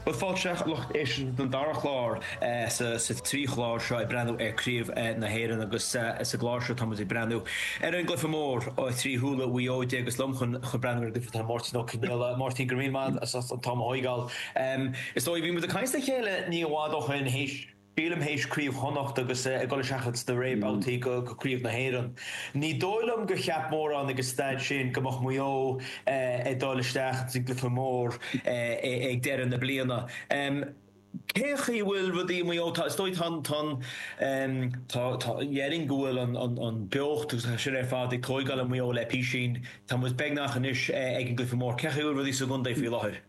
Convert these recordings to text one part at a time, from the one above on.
Bhuel fáilte a lucht éisteachta don dara clár sa trí chlár seo ag breathnú ar Chraobh na hÉireann agus sa gclár seo táimid ag breathnú ar an gcluiche mór trí shúile Mhaigh Eo. Ó, agus liom chun breathnú ar an gcluiche tá Máirtín Ó Conaola. Máirtín, go raibh maith agat as an am a thóigeáil. Is dóigh bhí muid ag caint le chéile ní i bhfad ó shoin théis Sílim théis Chraobh Chonnacht agus ag dul isteach ins na réamhbabhtaí go Craobh na hÉireann. Ní dóigh liom gur cheap mórán ag an staid sin go mbeadh Maigh Eo ag dul isteach ins an gcluiche mór ag deireadh na bliana. Cén chaoi a bhfuil rudaí i Maigh Eo? Tá, is dóigh, tá an, tá an, tá, tá, déarfainn go bhfuil an, an, an bheocht agus é sin ar fad ag tóigeáil i Maigh Eo le písín. Tá muid beagnach anois ag an gcluiche mór. Cén chaoi a bhfuil rudaí sa gcontae faoi láthair?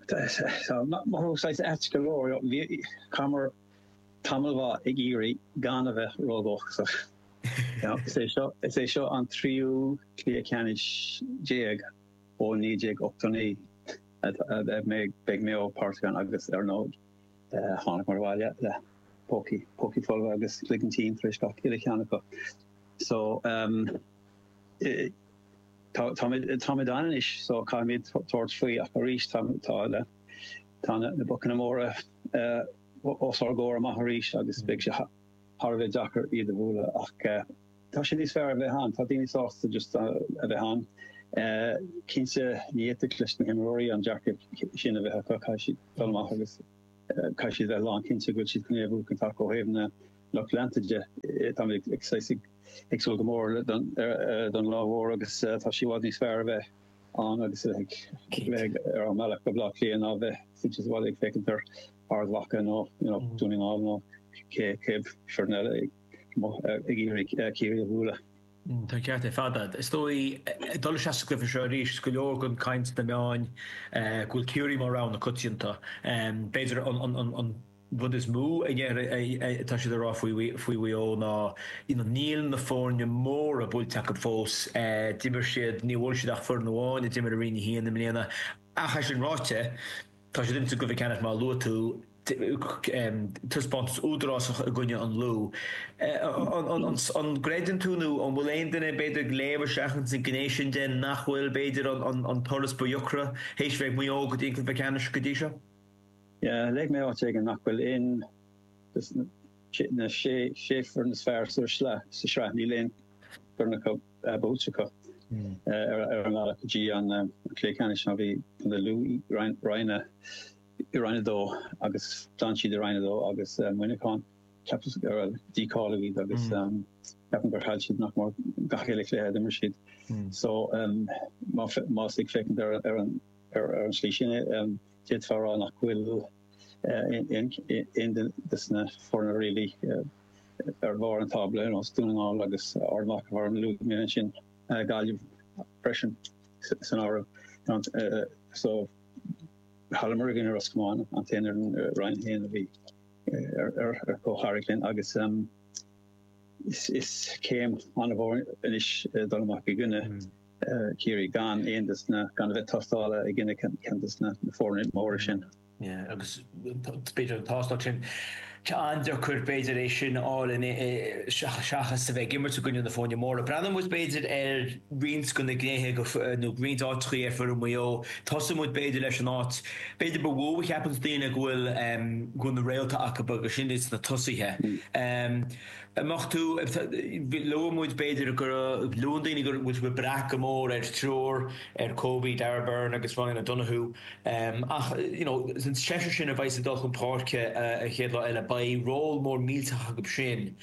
Tá sé saghas ait go leor. Chaitheamar tamall maith ag iarraidh gan a bheith ródhóchasach. Is é seo an tríú Cluiche Ceannais déag ó 1989 a mbeidh Maigh Eo páirteach ann agus ar ndóigh thángamar abhaile le pócaí pócaí folmha agus cloigeann tinn tar éis gach uile cheann acu. So, Táimid ann anois so caithfimid tabhairt faoi ach arís tá na bocanna móra os ár gcomhair amach arís agus beidh sé thar a bheith deacair iad a bhualadh ach tá sé níos fearr a bheith ann, tá daoine sásta just a bheith ann. Cinnte ní fhéadfadh leis na himreoirí an dearcadh sin a bheith acu, caithfidh siad dul amach agus caithfidh siad a bheith lánchinnte go bhfuil siad iomaíoch in ann acu ó thaobh na lucht leanta de. Táimid ag súil go mór don lá mhór agus tá sé i bhfad níos fearr a bheith ann agus a bheith ar ár mbealach go Baile Átha Cliath ná a bheith suite sa bhaile ag féachaint ar Ard Mhacha nó Dún na nGall nó cibé foireann eile ag iarraidh Ciarraí a bhualadh. Tá ceart agat. Is dóigh, ag dul isteach sa gcluiche seo arís, go leor den chaint sna meáin go bhfuil Ciarraí mar rogha na coitianta. B'fhéidir an rud is mó a tá siad ag rá faoi Mhaigh Eo ná níl na foirne móra buailte acu fós. D'imir siad, níor bhuail siad ach foireann amháin a d'imir i Roinn 1 i mbliana, ach é sin ráite, tá siad ins an gcluiche ceannais mar a luaigh tú, taispeántas údarásach i gcoinne an Lú. An gcreideann tú nó an bhfuil aon duine b'fhéidir ag léamh isteach ins an gné sin de nach bhfuil b'fhéidir an turas ba dheacra théis a bheith ag Maigh Eo go dtí an cluiche ceannais go dtí seo? Léigh mé áit éigin nach bhfuil éinne de na sé foireann is fearr sa sraith, níl aon fhoireann acu buailte acu ar an mbealach go dtí an cluiche ceannais mar bhí Contae Lú i Roinn a Dó agus d'fhan siad i Roinn a Dó agus Muineachán, ceapaim gur dícháilíodh iad agus ceapaim gur chaill siad nach mór gach uile chluiche a d'imir siad so má tá tú ag féachaint ar an slí sin é, D'fhéadfá a rá nach bhfuil éinne des na foirne really ar bharr an tábla, ar nós Dún na nGall agus Ard Mhacha mar a luaigh mé ansin, Gaillimh freisin san áireamh. So d'imríomar i gcoinne Ros Comáin, an t-aon fhoireann i Roinn 1 a bhí ar chomhtharraingt linn agus is céim an-mhór anois dul amach i gcoinne Ciarraí gan aon des na, gan a bheith tástála ag inne ceann de na foirne móra sin. Agus b'fhéidir an tástáil sin, tá an-deacair b'fhéidir é sin a fháil seachas a bheith ag imirt i gcoinne na foirne móra. Breathnóidh muid b'fhéidir ar roinnt de na gnéithe go, nó roinnt áiteachaí ar fhoireann Mhaigh Eo. Tosóidh muid b'fhéidir leis an áit b'fhéidir ba mhó a cheapanns daoine go bhfuil, go bhfuil na réalta acu agus sin iad sna tosaithe. amach thú. Luaigh muid, b'fhéidir, go luann daoine go bhfuil siad ag brath go mór ar thriúr, ar Kobe, Darragh Beirne agus Ryan O'Donoghue ach you know an seisear sin a bheidh ag dul chun páirce an chéad lá eile, beidh ról mór millteach acu sin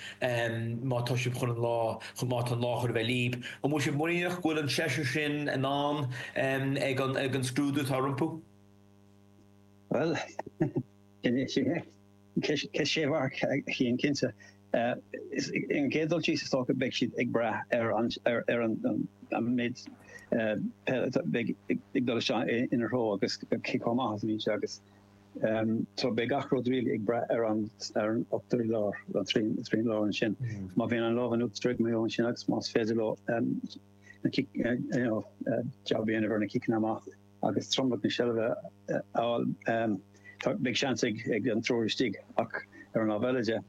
má tá sibh chun an lá, má tá an lá chun a bheith libh. An bhfuil sibh muiníneach go bhfuil an seisear sin in ann ag an scrúdú atá rompu? Bhuel, sin é. Ceist sé mharc a Chinn cinnte. Ar an gcéad dul síos is dócha beidh siad ag brath ar an méid peile atá ag dul isteach ina dtreo agus cé chomh maith is a bhíonn sé agus so beidh gach rud really ag brath ar an ochtar i lár an tríú láir ansin. Má bhíonn an lámh in uachtar ag Maigh Eo ansin agus más féidir leo jab a dhéanamh ar na ciceanna amach. agus tromlach na seilbhe a fháil, beidh seans ag an triúr istigh ach ar an lámh eile de,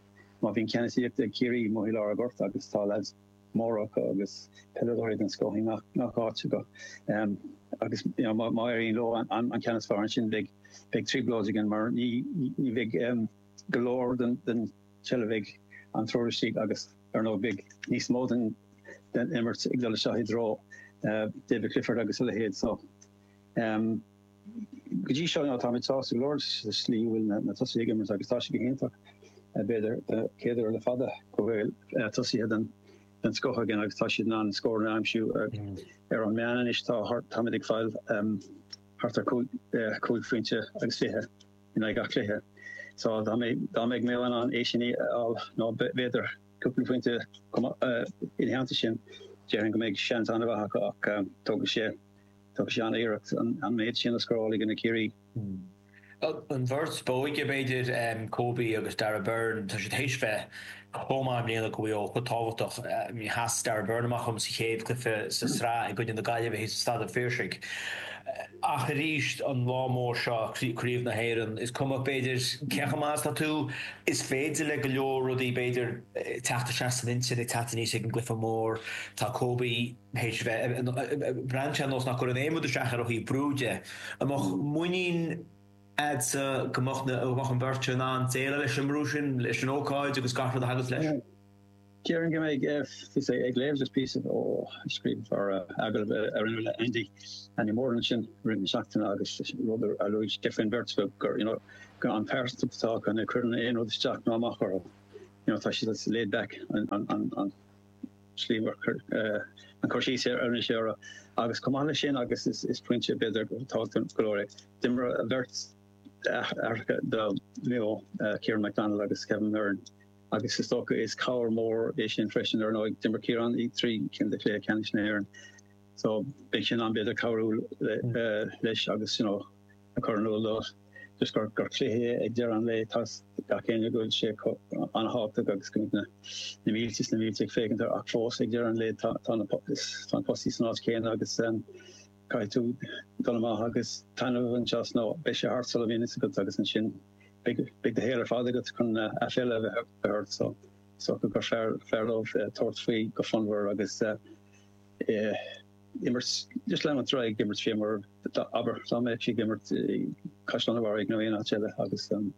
má bhíonn ceannasaíocht ag Ciarraí, maidir le lár an ghoirt agus tá leaids móra acu agus peileadóirí den scoth i ngach áit acu agus má éiríonn leo an ceannas a fháil ansin beidh trioblóid againn mar ní bheidh go leor den seilbh ag an triúr istigh agus Ar ndóigh, beidh níos mó den imirt ag dul isteach i dtreo David Clifford agus a leithéid so. Go dtí seo, táimid sásta go leor leis an slí a bhfuil na tosaithe ag imirt agus tá sé go hiontach, b'fhéidir don chéad uair le fada, go bhfuil tosaithe den scoth againn agus tá siad in ann scóranna a aimsiú. Ar an meán anois, táimid ag fáil thart ar chúig phointe agus fiche. in aghaidh gach cluiche. So dá mbeadh Maigh Eo in ann é sin a fháil, nó b'fhéidir cúpla phointe ina theannta sin, déarfainn go mbeidh seans an-mhaith acu ach tógfaidh sé an-iarracht an méid sin a scóráil i gcoinne Ciarraí. An bheirt b'óige, b'fhéidir, Kobe agus Darragh Beirne, tá siad théis bheith chomh maith i mbliana go bhfuil cuid tábhachtach de sheas Darragh Beirne amach dhom sa chéad chluiche sa tsraith i gcoinne na Gaillimhe thíos i Staid an Phiarsaigh ach arís an lá mór seo Craobh na hÉireann is cuma b'fhéidir cé chomh maith is atá tú is féidir le go leor rudaí b'fhéidir teacht isteach san intinn ag teacht aníos ag an gcluiche mór tá Kobe tar éis bheith ag breathnú ar nós nach gcuireann aon rud isteach air ó thaobh brú de an mbeadh muinín agat go mbeadh na, go mbeadh an bheirt in ann déileáil leis an mbrú sin, leis an ócáid agus gach rud a thagas leis. Déarfainn go mbeidh, bhíos, é, ag léamh just píosa ó scríbhneoir, agallamh a rinneadh le Andy, Andy Moran ansin i rith na seachtaine agus rud a luaigh sé faoin bheirt acu gur, you know, go, an pearsantachtaí atá acu, ní chuireann aon rud isteach ná amach orthu, you know, tá siad just laid back, an, an, an, an. Is ea an cur síos a rinne sé orthu agus chomh maith leis sin agus is pointe b'fhéidir tábhachtach go leor é, d'imir a bheirt aithreacha do Mhaigh Eo, Ciarán McDonald agus Kevin Beirne agus is dócha is cabhair mór é sin freisin ar ndóigh d'imir Ciarán i dtrí cinn de chluiche ceannais na hÉireann so beidh sé in ann b'fhéidir cabhrú leis agus you know, ag cur in iúl dó leis gur cluiche é ag deireadh an lae, tá gach éinne ag go bhfuil sé an-tábhachtach agus go mbeidh na mílte is na mílte ag féachaint air ach fós ag deireadh an lae tá na postaí san áit chéanna agus caithfidh tú dul amach agus taitneamh a bhaint as nó beidh sé thart sula mbíonn a fhios agat agus ansin beidh do shaol ar fad agat chun aiféala a bheith ort so so go gur fearr dóibh tabhairt faoi go fonnmhar agus eh, imirt de Slam an Tráigh ag imirt fé mar tá abair tá mé ag imirt i Caisleán an Bharraigh nó aon áit eile agus um,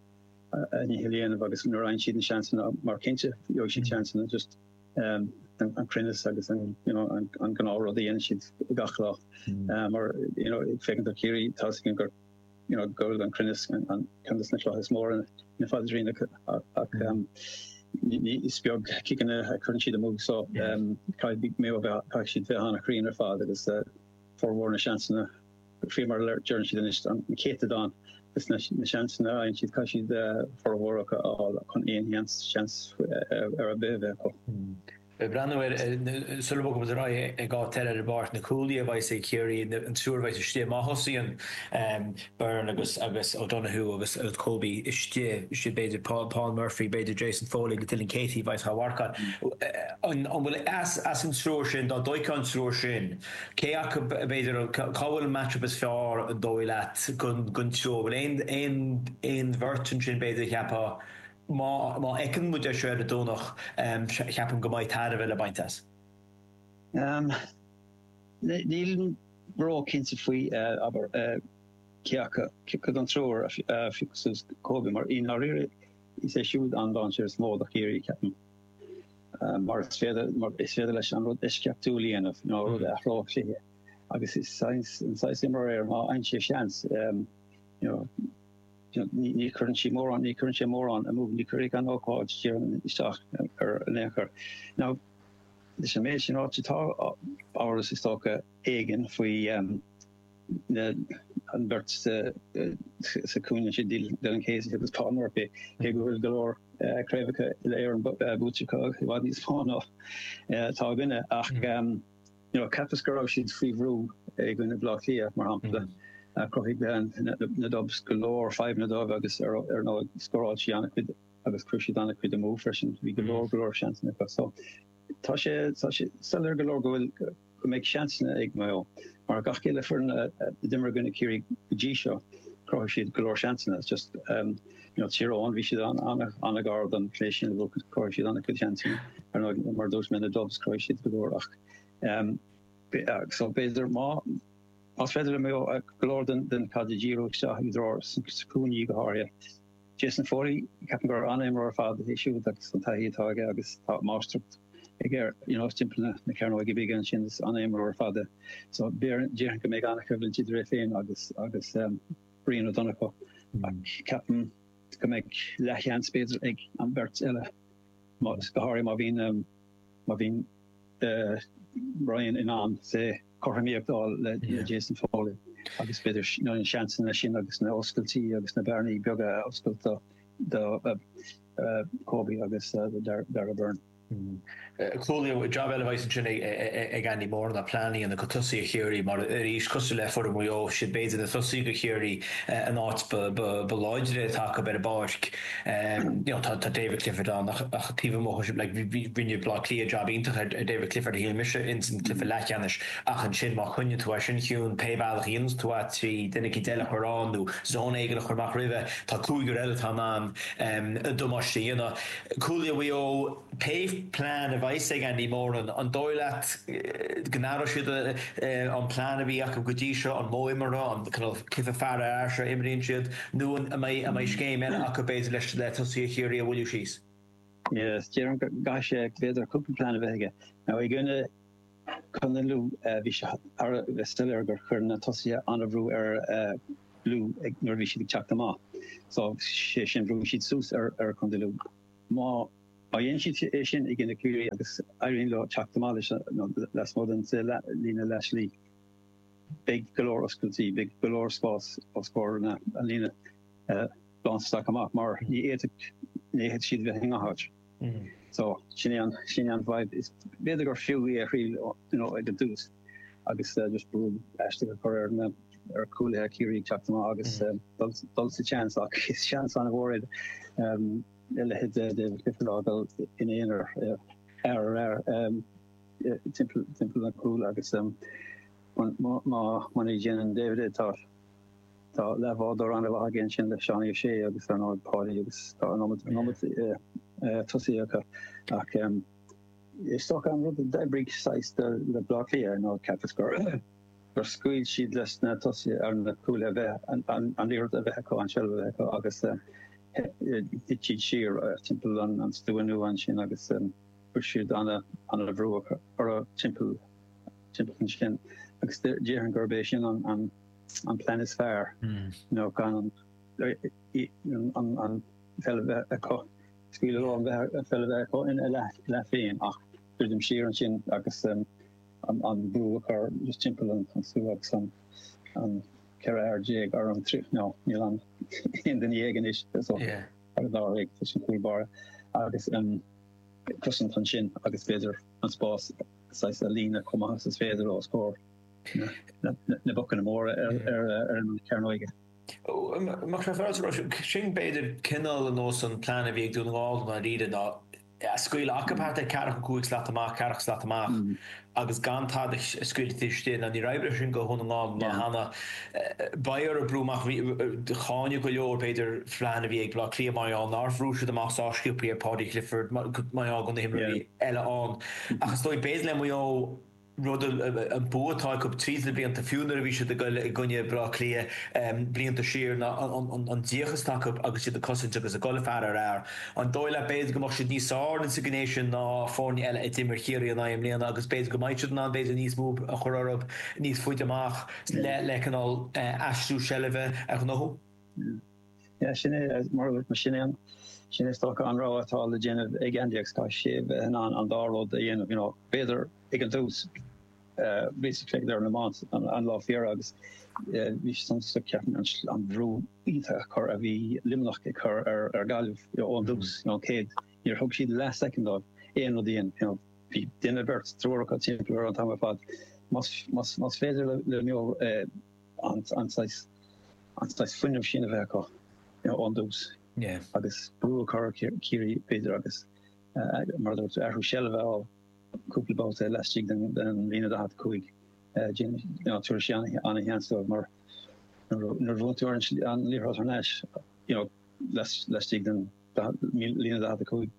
a ní dhéanamh agus nuair ein siad an seansanna mar cinnte jo si chansanna just um, an, an crinne agus an you know, an, an gná rod dhéana siad gachlá mm. uh, mar you know, fégan a chéirí tá gur Go raibh an cruinneas ann, ceann de na clocha is mó ar an phaidrín acu, is beag ciceanna a chuireann siad amú, so caithfidh Maigh Eo a bheith, caithfidh siad bheith an-chruinn ar fad agus formhór na seansanna, fé mar a deireann siad anois, an céatadán de na seansanna a fhaigheann siad, caithfidh siad formhór acu a fháil chun aon sheans ar bith a bheith acu. Ag breathnú ar Sula bhfágfaidh an ráithe ag á dteil ar bpáirc na cuaillí a bheidh sé, Ciarraí, an triúr a bheidh istigh má thosaíonn Byrne agus O'Donoghue agus Kobe istigh, b'fhéidir Paul Murphy, b'fhéidir Jason Foley agus Dylan Casey a bheidh á marcáil. An bhfuil as an triúr sin, dá dtóigfeá an triúr sin, cé acu, b'fhéidir, cá bhfuil an match-up is fearr, an dóigh leat, don triúr? An bhfuil aon bheirt ansin, b'fhéidir, a cheapfá Má fheiceann muid é seo ar an Domhnach, cheapfainn go mbeadh tairbhe le baint as. Nílim ró-chinnte faoi, abair, cé acu den triúr a phiocfadh suas Kobe, mar i ndáiríre is é siúd an dáinséar is mó do Chiarraí, ceapaim, mar is féidir leis an rud eisceachtúil a dhéanamh, nó rud a athródh cluiche, agus is é an saghas imreoir é má fhaigheann sé seans, you know. Ní chuireann sí mórán, ní chuireann sé mórán amú, ní chuirfidh an ócáid, déarfainn, isteach air in aon chor. Now, leis an méid sin ráite, tá amhras, is dócha, éigin faoi an bheirt sa chúinne sin, Dylan Casey agus Paul Murphy, cé go bhfuil go leor craobhacha Uile-Éireann buaite acu i bhfad níos mó ná tá againne, ach, Cheapas go raibh siad faoi bhrú i gcoinne Bhleá Cliath, mar shampla. Chruthaigh na Dubs go leor fadhbanna dóibh agus ar ndóigh scóráil siad an-chuid agus chuir siad an-chuid amú freisin. Bhí go leor go leor seansanna acu. So, tá sé soiléir go leor go bhfuil, go mbeidh seansanna ag Maigh Eo. Mar gach uile fhoireann a d'imir i gcoinne Ciarraí go dtí seo, chruthaigh siad go leor seansanna. It's just. Tír Eoghain, bhí siad an-ghar don phlé sin a bhfuil cuid cóir siad ann, cuid shean tí, ar ndóigh, mar a dúirt mé, na Dubs, chruthaigh siad go leor ach so b'fhéidir má, más féidir le Maigh Eo go leor den den chaid a díriú isteach i dtreo na gcúinní go háirithe. Jason Foley, ceapaim gur an-imreoir ar fad é siúd agus an taithí atá aige agus tá máistreacht aige ar you know timpeall na na cearnóige bige ansin is an-imreoir ar fad é so b'fhéarr déarfainn go mbeidh an-choimhlint idir é féin agus agus Ryan O'Donoghue, ach ceapaim go mbeidh leathsheans b'fhéidir ag an bheirt eile, go háirithe má bhíonn má bhíonn Ryan in ann cothromaíocht a fháil le Jason Foley agus b'fhéidir na seansanna sin agus na oscailtí agus na bearnaí beaga a oscailt do Kobe agus Darragh Beirne. Clúdaíodh i jab eile a bheas ansin ag Andy Moran ná pleanáil le haghaidh tosaithe Chiarraí mar, arís cosúil le foireann Mhaigh Eo, 'siad b'fhéidir na tosaithe ag Ciarraí, an áit ba láidre atá acu ar an bpáirc. Tá David Clifford ann ach taobh amuigh sin, rinne Bleá Cliath jab iontach ar David Clifford a shíl mise ins an cluiche leathcheannais ach ansin má choinníonn tú é sin ciúin pé bealach a dhéananns tú é, trí duine eicínt eile a chur ann nó zón éigin a chur amach roimhe, tá cúigear eile atá in ann damáiste a dhéanamh. Cuaille Mhaigh Eo, cén plean a bheas ag Andy Moran, an dóigh leat go n-athróidh siad an plean a bhí acu go dtí seo, an modh imeartha, an cineál cluiche fear ar fhear seo a imríonn siad, nó an mbeidh scéim eile acu, b'fhéidir, leis, le tosaithe Chiarraí a mhoilliú síos? Yes, déarfainn go gcaithfidh sé b'fhéidir cúpla plean a bheith aige. Now, i gcoinne. Contae Lú, bhí sé thar a bheith soiléir gur chuir na tosaithe an-bhrú ar Lú nuair a bhí siad ag teacht amach, sé sin bhrúigh siad suas ar Chontae Lú. Má dhéanann siad é sin i gcoinne Ciarraí agus éiríonn leo teacht amach leis lasmuigh den líne leathshlí, beidh go leor oscailtí, beidh go leor spás os comhair an líne lántosach amach mar ní fhéadfaidh siad bheith i ngach áit. So, sin é, sin é an fhadhb. B'fhéidir gur fiú í a thriail, you know, ag an dtús, agus just brú aisteach a chur ar na, ar cúlaithe Ciarraí ag teacht amach agus dul, dul sa tseans, ach is seans an-mhór é leithéid David Clifford a fhágáil ina aonar fear ar fhear timpeall, timpeall an chúil agus má, má, muna ndéanann David é, tá. Tá leathbhádóir an-mhaith aige ansin le Seánie Ó Sé agus ar ndóigh Páidí agus tá an iomad an iomad tosaithe acu ach ehm is dócha an rud a d'oibrigh saghas do le Bleá Cliath nó ceapas gur gur scaoil siad leis na tosaithe nó na cúlaithe an an an liathróid a bheith acu an seilbh a bheith acu agus eh, eh, thit siad siar eh, timpeall an an stua nua ansin agus em, bhí siad an- an-bhrú acu ar a timpeall timpeall ansin agus dé- déarfainn gurb é sin an an an plean is fearr ná gan an pheil a bheith acu, scaoileadh leo an pheil a bheith acu ina leath féin, ach druidim siar ansin agus an brú a chur just timpeall an stua agus an 14 ar, nó níl ann aon duine dhéag anois so ar an dáréag leis an gcúl báire, agus cosaint ansin agus b'fhéidir an spás saghas a líonadh chomh maith is is féidir os comhair. na bocanna móra ar an chearnóg. Mar sin chuireas roimh sin b'fhéidir cineál ar nós an plean a bhí ag Dún na nGall i ndáiríre ná é a scaoileadh acub thart ar ceathracha cúig slat amach, ceathracha slat amach agus gan tada a scaoileadh taobh istigh. Now níor oibrigh sin do Dhún na nGall mar cheana. Beidh orthu brú amach, bhí, cáineadh go leor b'fhéidir plean a bhí ag Baile Átha Cliath mar gheall nár bhrú siad amach sách sciobthaí ar Paudie Clifford mar gheall go na himreoirí eile ann. Ach is dóigh b'fhéidir le Maigh Eo, rud a, an bua atá acu tríd na blianta, fiú nuair a bhí siad ag goil i gcoinne Bhaile Átha Cliath blianta siar, ná an díocas atá acu agus iad ag cosaint agus ag goil fear ar fhear. An dóigh leat, b'fhéidir, go mbeadh siad níos fearr insa ghné sin ná foirne eile a d'imir Ciarraí ina n-aghaidh i mbliana agus b'fhéidir go mbeidh siad in ann, b'fhéidir, níos mó brú a chur orthu níos faide amach le cineál aistriú seilbhe a ghnóthú? Sea, sin é, mar a bhfuil, mar sin é an, sin é is dócha an rogha atá le déanamh ag Andy agus caithfidh sé a bheith in ann an dá rud a dhéanamh, you know, b'fhéidir ag an dtús, bhíos ag faire ar an iomáint an lá faoi dheireadh agus bhí sé suntasach ceapaim an, an brú iontach a chur a bhí Luimneach ag cur ar, ar Gaillimh, you know, ón dtús, you know, céad, níor thug siad leath soicind dóibh aon rud a dhéanamh, you know, bhí duine beirt, triúr acu timpeall ar an t-am ar fad, más, más, más féidir le, le Maigh Eo, eh, an saghas an saghas fuinnimh sin a bheith acu ón dtús agus brú a chur ar Chiarraí b'fhéidir agus mar a dúirt tú athrú seilbh a fháil cúpla babhta laistigh den den líne 45 déanann ná tabharfaidh sé an-sheans dóibh mar nuair a bhuann tú ar an liathróid thar n-ais you know lais laistigh den líne 45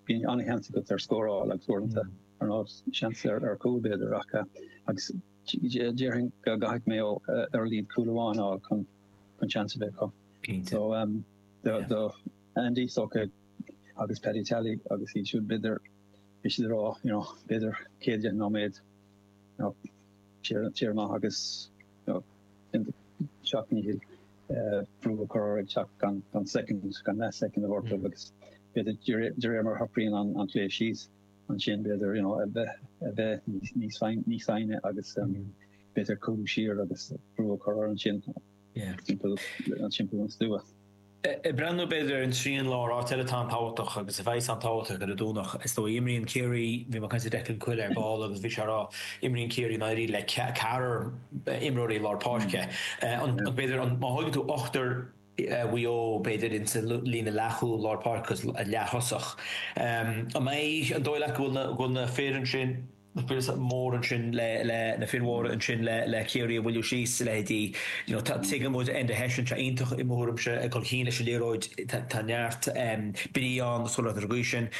bíonn an-sheans agat ar scór a fháil agus uaireanta ar nós seans ar ar cúl b'fhéidir ach agus Déarfainn go gcaithfidh Maigh Eo ar a laghad cúl amháin a fháil chun chun seans a bheith acu. Cinnte. So um do Yeah. do Andy is dócha agus Paddy Tally agus iad siúd b'fhéidir bhí siad ag rá you know b'fhéidir céad dheich nóiméad you know téir téir amach agus you know déan do sheacht ndícheall eh brú a chur orthu ag teacht gan gan soicind gan leath soicind a thabhairt dóibh agus b'fhéidir de ré- de réir mar a shocraíonn an an cluiche síos ansin b'fhéidir you know a bheith a bheith níos níos níos foighní agus b'fhéidir cúlú siar agus brú a chur orthu ansin timpeall an timpeall an stua. Ag breathnú b'fhéidir an trian láir áit eile atá an-tábhachtach agus a bheas an-tábhachtach ar an Domhnach. Is dóigh imríonn Ciarraí, bhí mé ag caint le Declan Quill ar ball agus bhí sé ag rá, imríonn Ciarraí i ndáiríre le ceathrar imreoirí lár páirce. An b'fhéidir an má thógann tú ochtar. Mhaigh Eo, b'fhéidir, ins an líne leathchúil, lár páirce agus leath-thosach. An dóigh leat go bhfuil na fir ansin, na fir is mór ansin le, le, na fir mhóra ansin le, le Ciarraí a mhoilliú síos, leithéidí, you know, tá, tuigim go bhfuil Enda Hession anseo iontach, i mo thuairimse, ag dul chun cinn leis an liathróid, tá, tá neart brí ann agus chuile rud ar an gcaoi sin.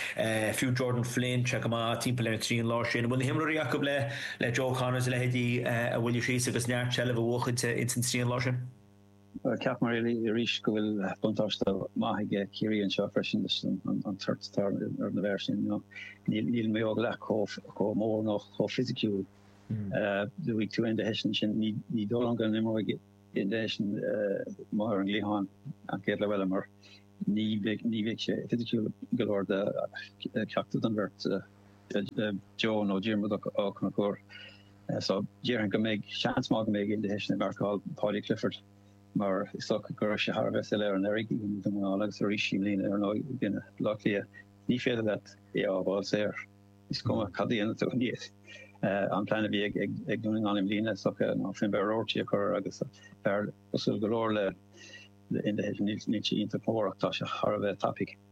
Fiú Jordan Flynn, tá sé go maith timpeall ar an trian láir sin. An bhfuil na himreoirí acu le, le Joe O'Connor is a leithéidí a mhoilliú síos agus neart seilbhe a bhuachaint ins an trian láir sin? Ceapaim arís go bhfuil buntáiste maith aige Ciarraí anseo freisin leis an toirt atá ar na fir sin. Níl Maigh Eo leath chomh mór nó chomh fisiciúil. Luaigh tú Enda Hession ansin, ní dóigh liom go n-imreoidh Enda Hession amuigh ar an gcliathán an chéad lá eile mar ní bheidh sé fisiciúil go leor do cheachtar den bheirt, Joe nó Diarmuid Ó Conchúir. So, déarfainn go mbeidh seans maith go mbeidh Enda Hession ag marcáil Paudie Clifford mar is dócha go raibh sé thar a bheith soiléir anuraidh i gcoinne Dhún na nGall agus arís i mbliana ar ndóigh i gcoinne Baile Átha Cliath. Ní féidir leat é a fhágáil saor. Is cuma cad a dhéanann tú. An plean a bhí ag Dún na nGall i mbliana is dócha ná Finbarr Roarty a chur agus fear cosúil go leor le Enda Hession, níl sé iontach mór ach tá sé thar a bheith tapaidh.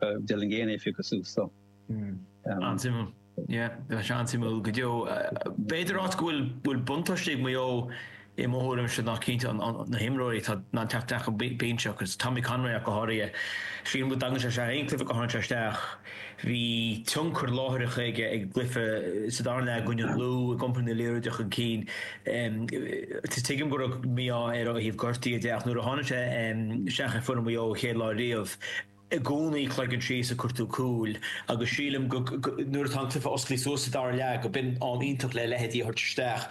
D'fheil an gcéanna oifig go suas dó. An-suimiúil. Yeah, Tá sé an-suimiúil go deo. B'fhéidir áit go bhfuil bhfuil buntáiste ag Maigh Eo i mo thuairimse ná cinnte na himreoirí atá in ann teacht isteach ón mbinse agus Tommy Conroy ach go háirithe. Sílim go dtagann sé isteach aon cluiche go tháinig sé isteach. Bhí tionchar láithreach aige ar an gcluiche sa dara leath i gcoinne an Lú ag iompar na liathróide chun cinn. Tuigim go raibh mí-ádh air ó thaobh gortaithe de ach nuair a tháinig sé isteach ar foireann Mhaigh Eo an chéad lá riamh, I gcónaí cloigeann síos ag cuartú cúil agus sílim go nuair atá an cluiche osclaithe suas sa dara leath gurb in am iontach le a leithéidí a thabhairt isteach.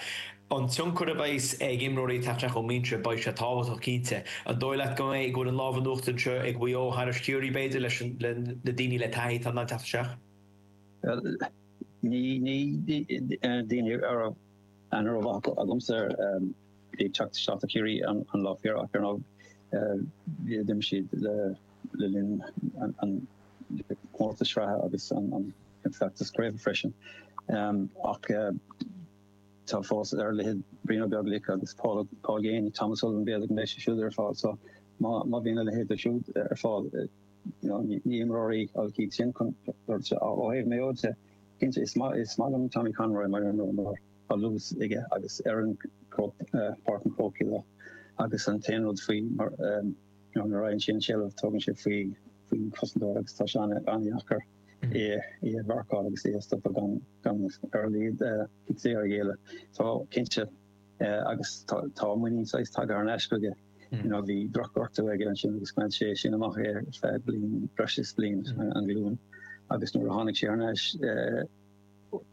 An tionchar a bheas ag imreoirí ag teacht isteach ón mbinse beidh sé tábhachtach cinnte. An dóigh leat go mbeidh go bhfuil an lámh in uachtar anseo ag Mhaigh Eo thairis Chiarraí b'fhéidir leis an le na daoine le taithí atá in ann teacht isteach? Bhuel ní ní daoine a raibh an raibh acu agamsa. Bhí ag teacht isteach do Chiarraí an lá faoi dheireadh ach ar ndóigh bhí a d'imir siad le linn an chomórtas sraithe agus an feachtas craoibhe freisin. Ach tá fós ar a laghad Brian Ó Beaglaoich agus Paul Geaney, Tom O'Sullivan b'fhéidir go mbeidh siad siúd ar fáil so má bhíonn a leithéidí siúd ar fáil ní imreoirí a bhí tinn chun dul isteach. Ó thaobh Mayo de, cinnte is maith liom Tommy Conroy mar imreoir. á luas aige agus oireann Páirc an Chrócaigh dó agus an t-aon rud faoi mar nuair a fhaigheann sé an seilbh tugann sé faoin gcosantóir agus tá sé an-deacair é a mharcáil agus é a stopadh gan gan ar a laghad cic saor a ghéilleadh. Tá cinnte agus tá tá muinín saghas tagtha thar n-ais chuige you know bhí drochghortú aige ansin agus bhain sé sin amach ar feadh bliain breis is bliain an ghlúin agus nuair a tháinig sé thar n-ais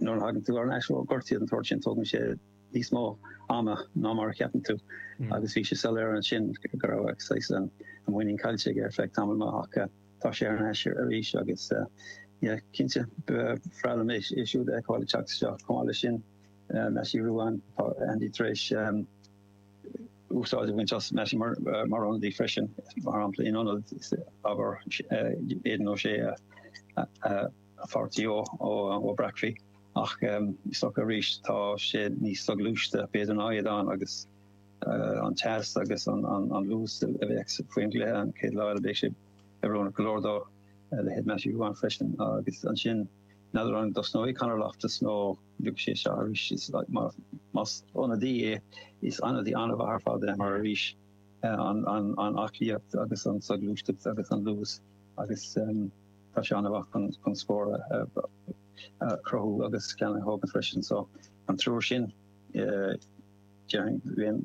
Nuair a thagann tú thar n-ais ó ghortuithe den tsórt sin, tógann sé níos mó ama ná mar a cheapann tú, agus bhí sé soiléir ansin go raibh saghas an mhuinín caillte aige ar feadh tamaill maith, ach tá sé thar n-ais arís agus, yeah, cinnte, ba bhreá liom é siúd a fheiceáil ag teacht isteach. Chomh maith leis sin, Mattie Ruane, tá Andy tar éis úsáid a bhaint as Mattie mar ionadaí freisin, mar shampla, in ionad abair Aidan O'Shea a pháirtí ó Bhob Brackley, ach is dócha arís tá sé níos soghluaiste b'fhéidir ná Aidan agus an teas agus an luas a bheidh faoin gcluiche an chéad lá eile beidh sé oiriúnach go leor dó, a leithéid de Matthew Ruane freisin agus ansin n'fheadar an dtosnóidh Conor Loftus nó beidh sé seo arís is más ionadaí é is ionadaí an-mhaith ar fad é mar arís an aclaíocht agus an soghluaisteacht agus an luas agus Tá sé an-mhaith chun scór a chruthú agus ceann a thógaint freisin. So, an triúr sin, déarfainn,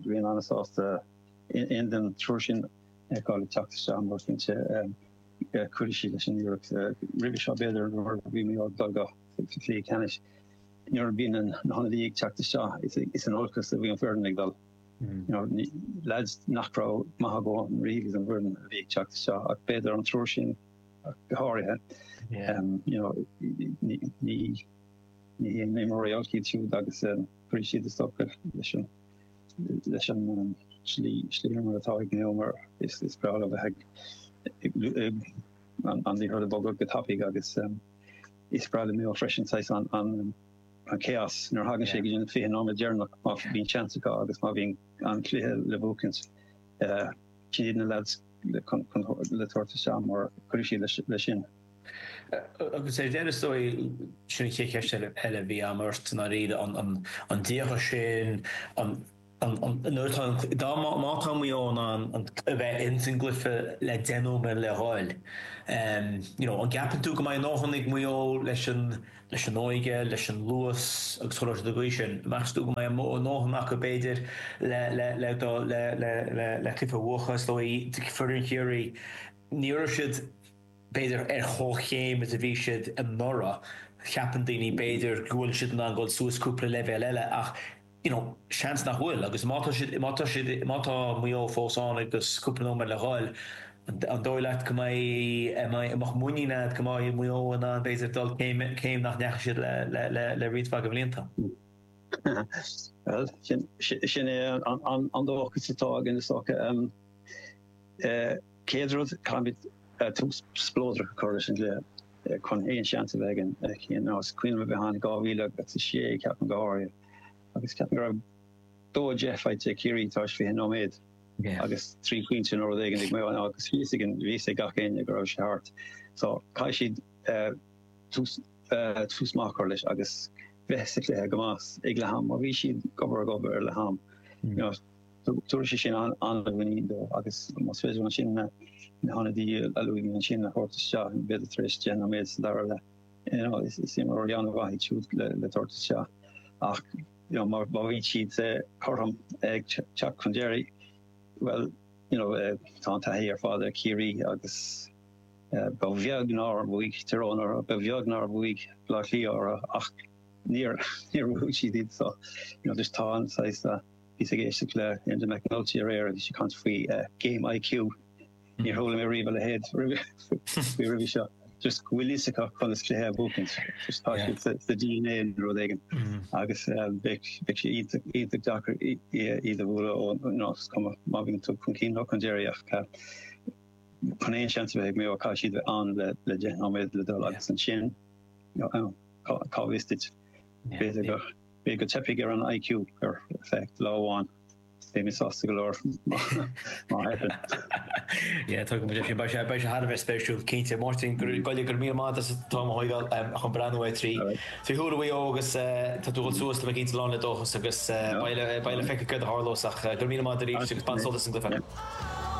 bheinn an-sásta aon duine den triúr sin a fheiceáil ag teacht isteach mar cinnte cuirfidh siad leis an iarracht. Roimhe seo b'fhéidir nuair a bhí Mayo ag dul go cluichí ceannais, nuair a bhí na hionadaí ag teacht isteach, is in olcas a bhí an foireann ag dul. Lads nach raibh maith go leor a bheith ins an bhfoireann a bhí ag teacht isteach ach b'fhéidir an triúr sin, go háirithe. You know, ní, ní, ní haon imreoirí olc iad siúd agus cuirfidh siad is dócha leis an, leis an slí, slí imeartha atá ag Mayo mar is, is breá leo bheith ag an, an liathróid a bhogadh go tapaidh agus is breá le Mayo freisin saghas an, an, an chaos nuair a thagann sé go dtí an fiche nóiméad deireanach má bhíonn seans acu agus má bhíonn an cluiche le buachaint. Sin iad na leaids. le tabhairt isteach mar cuirfidh siad leis sin. Agus ar deireadh, is dóigh, sin an chéad cheist eile a bhí agam ort, i ndáiríre, an díogha sin, nuair atá an, dá, má tá muid in ann an, a bheith ins an gcluiche le deich nóiméad le dhul, you know, an gceapann tú go mbeidh a ndóthain ag Maigh Eo leis an. leis an óige, leis an luas agus chomh luath agus sin. Meastú go mbeidh a ndóthain acu, b'fhéidir, le cluiche a bhuachan, is dóigh, foireann Chiarraí. Ní raibh siad, b'fhéidir, ar chomhchéim is a bhí siad anuraidh. Cheapann daoine, b'fhéidir, go bhfuil siad in ann dul suas cúpla leibhéal eile ach, you know, seans nach bhfuil, agus má tá siad, má tá siad, má tá Maigh Eo fós ann agus cúpla nóiméad le dhul, an dóigh leat go mbeidh, mbeadh muinín a'd go mbeidh Maigh Eo in ann b'fhéidir dul céim, céim nach ndeachaigh siad le, le, le, le roinnt mhaith de bhlianta? Bhuel, sin, sin é an, an dóchas atá againn, is dócha. Chéad rud, caithfimid tús spleodrach a chur leis an gcluiche, chun aon seans a bheith againn, mar is cuimhin liom a bheith ann in 2006, ceapaim go háirithe, agus ceapaim go raibh dó a deich faighte ag Ciarraí tar éis fiche nóiméad agus trí phointe nó rud éigin ag Maigh Eo agus bhí a fhios againn, bhí a fhios ag gach éinne go raibh sé thart. So caithfidh siad tús tús maith a chur leis agus bheith sa chluiche go maith as ag leath am má bhíonn siad gobar ag obair ar leath am. Tabharfaidh sé sin an-mhuinín dóibh agus más féidir leo ansin na hionadaí a luaigh mé ansin a thabhairt isteach b'fhéidir tar éis deich nóiméad sa dara leath. Agus imreoirí an-mhaith iad siúd le tabhairt isteach ach má bhíonn siad cothrom ag teacht chun deiridh, bhuel, tá an taithí ar fad ar Chiarraí agus ba bheag nár bhuaigh Tyrone, ba bheag nár bhuaigh Baile Átha Cliath orthu ach níor bhuaigh siad. So, you know, tá an saghas, bhíos ag éisteacht le hEnda McNulty aréir agus bhí sé ag caint faoi game IQ. Níor chuala mé riamh a leithéid roimhe seo. Just go bhfuil a fhios acu conas cluiche a bhuacaint. Tá sé sa dna nó rud éigin. Agus bheadh sé iontach deacair iad a bhualadh ó, you know, is cuma má bhíonn tú chun cinn leo chun deiridh ach chun aon seans a bheith ag Maigh Eo caithfidh siad a bheith ann le deich nóiméad le dul agus ansin cá bhfios duit. B'fhéidir go dteipfeadh ar an IQ ar feadh lá amháin. Beidh mé sásta go leor má theipeann. Yeah, tuigim go deimhin. Beidh sé thar a bheith spéisiúil, cinnte. Máirtín, go raibh míle, go raibh míle maith agat as an t-am a thógáil chun breathnú ar trí thuar Mhaigh Eo agus tá tú ag dul suas, tá mé cinnte, lán le dóchas agus beidh le feiceáil cad a tharlós ach go raibh míle maith agat aríst agus bain sult as an gcluiche.